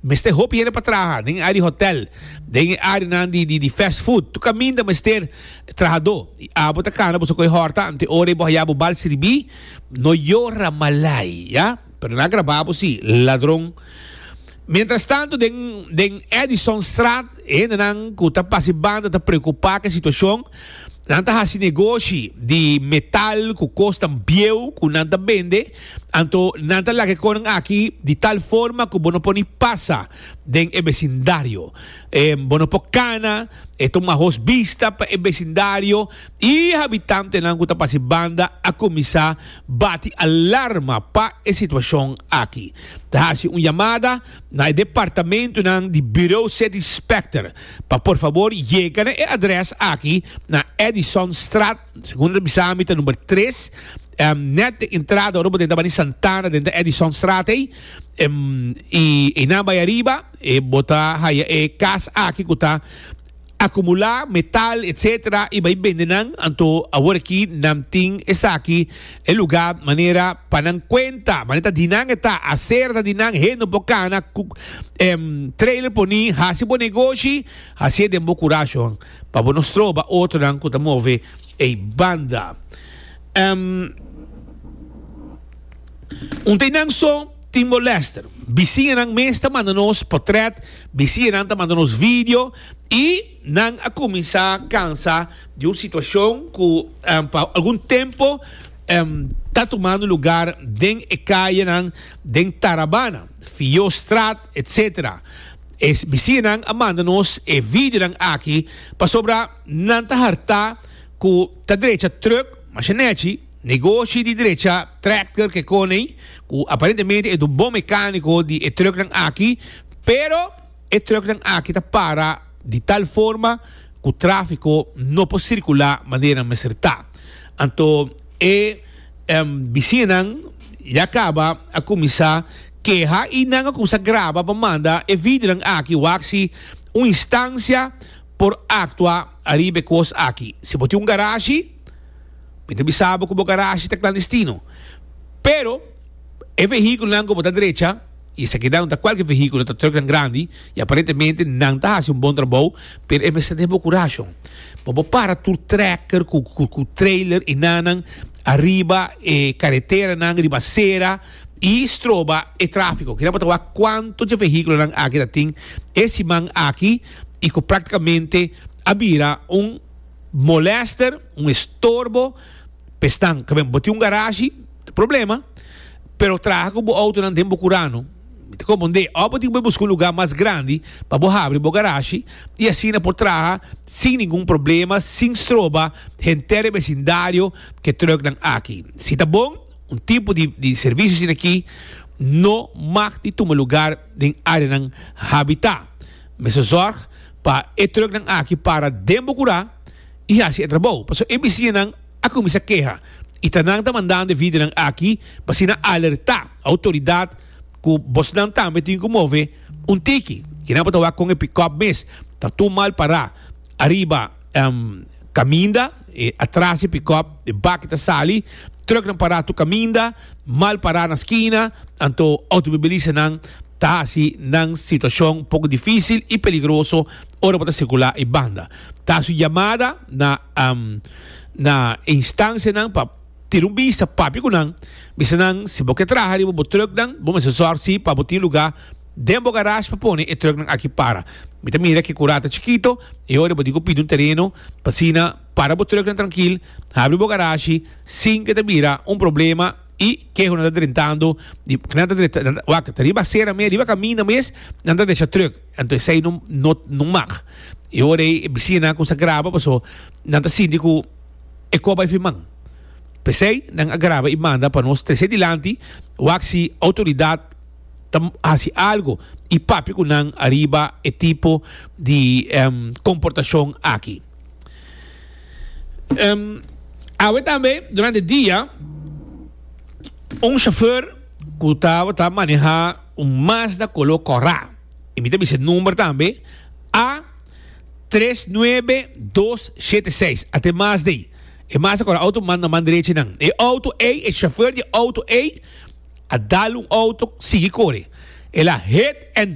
Mester hopi hende pa traha den e área di hotèl, den e áreanan di fast food. Tur kaminda mester trahadó. I abo ta kana bo so ku e hòrta ante ora i bo haya bo bal sirbi, no yora malai, ya? Pero nan a grabá bo sí, ladron. Mientrastantu, den Edisonstraat, e hendenan ku ta pasa e banda ta preokupá ku e situashon. Nan ta hasi negoshi di metal ku kosnan bieu ku nan ta bende. Anto nan ta laga e konan aki di tal forma ku bo no por ni pasa den e besindario. Bo no por kana, e tuma hos bista pa e besindario i habitantenan ku ta pas e banda a kuminsá bati alarma pa e situashon aki. Ta hasi un yamada na e departamentunan di Bureau City Specter pa por fabor yega na e adrès aki na Edisonstraat, Segundo bisa mi ta number tres. Um, net de entrada ora bo den ta bani Santana, den ta Edisonstraat ei. Um, i einan bai ariba, e bo ta haya e kas aki ku ta akumulá metal, etcétera, i bai bende nan. Anto awor aki nan tin esaki e lugá manera pa nan kuenta. Manera ta di nan e ta, asera ta di nan, hende no por kana ku um, trailer por ni hasi bo negoshi, hasié den bo kurashon. Pa bo no stroba otronan ku ta move ei banda. Em Un teinan so Timor Lester. Bisiñanan mes ta manda nos potrèt, bisiñanan ta manda nos video i nan a kuminsá kansa di un situashon ku pa algun tempu em ta tumando lugar den e kayenan den Tarabana, Fiyostraat. etc. E bisinan a manda nos e videonan aki pasobra nan ta hartá ku ta drecha trùk, mashinèchi, negoshi di drecha trèkter ke konei, ku aparentemente e dun bon mekániko di e trùknan aki, pero e trùknan aki ta para di tal forma ku tráfiko no por sirkulá manera nan mester ta. Anto e bisinan ya kaba a kuminsá. Keha i nan akusa graba pa manda e videonan aki wak si un instansia por aktua ariba e kos aki. Si bo tin un garashi, mi ta bisa bo ku bo garashi ta klandestino. Pero e vehíkulonan ku bo ta drecha, i esaki nan no ta kualke vehíkulo, ta trùknan grandi i aparentemente nan ta hasi un bon trabou, pero e mester den bo kurashon. Bo por para tur trèker ku trailer i nannan ariba e kareteranan, riba sera. y stroba e trafico. Kira pa ta wak cuanto dje vehiculonan aki ta tin e siman aki y cu practicamente a bira un molester, un estorbo pa esnan. Cab'en bo tin un garashi ta problema, pero traha cu bo autonan den bo curano. Mi ta comund'é of bo tin cu busca un lugar mas grandi pa bo habri bo garashi y asina por traha sin ningun problema, sin stroba henter e vecindario cu e trucknan aki. Si ta bon. Un tipo di servicio asina aki no mag di tuma lugar den areanan habita. Mester zorg pa e truknan aki para den bo kura y haci e trabou, pasobra e bisiñanan a cuminsa keha y ta nan ta mandando e videonan aki pa asina alerta autoridad cu bosnan tambe tin cu move un tiki. Ki nan bo ta wak con e pick-up mes ta tur mal para ariba caminda. E atras di pickup, e baki ta sali, trucknan pará tur caminda, mal pará na skina, anto automobilistanan ta haci nan situacion poco dificil y peligroso ora bo ta circulá e banda. Ta haci un yamada na na e instancianan pa tira un bista, papia cu nan, bisa nan si bo ke traha riba bo trucknan bo mester zorg si pa bo tin lugá, Den bo garage pa pone e trucknan aki para. Mi ta mira ke kura ta chikito, e ora bo di ku pidi un tereno, pa asina para bo trucknan trankil, habri bo garashi sin ke ta bira un problema i ke honan ta drentando di nan ta drenta wak ta riba asera mes riba kaminda mes nan ta desha truck anto esei no no mag e ora ei e bisinanan kuminsa a graba paso nan ta sinti ku e kos bai fin man p'esei nan a graba i manda pa nos trese dilanti wak si outoridat ta hasi algo y papia cu nan ariba e tipo di comportacion aki. Awe tambe durante e dia un chauffeur cu tabata maneha un Mazda color cora, y mi ta bisa e number tambe, A tres nuebe dos shete seis, a te mas dey. E Mazda cora auto manda man derechi nan. E auto ey, e chauffeur di e auto ey. a dal un auto sigui kore, el a hit and.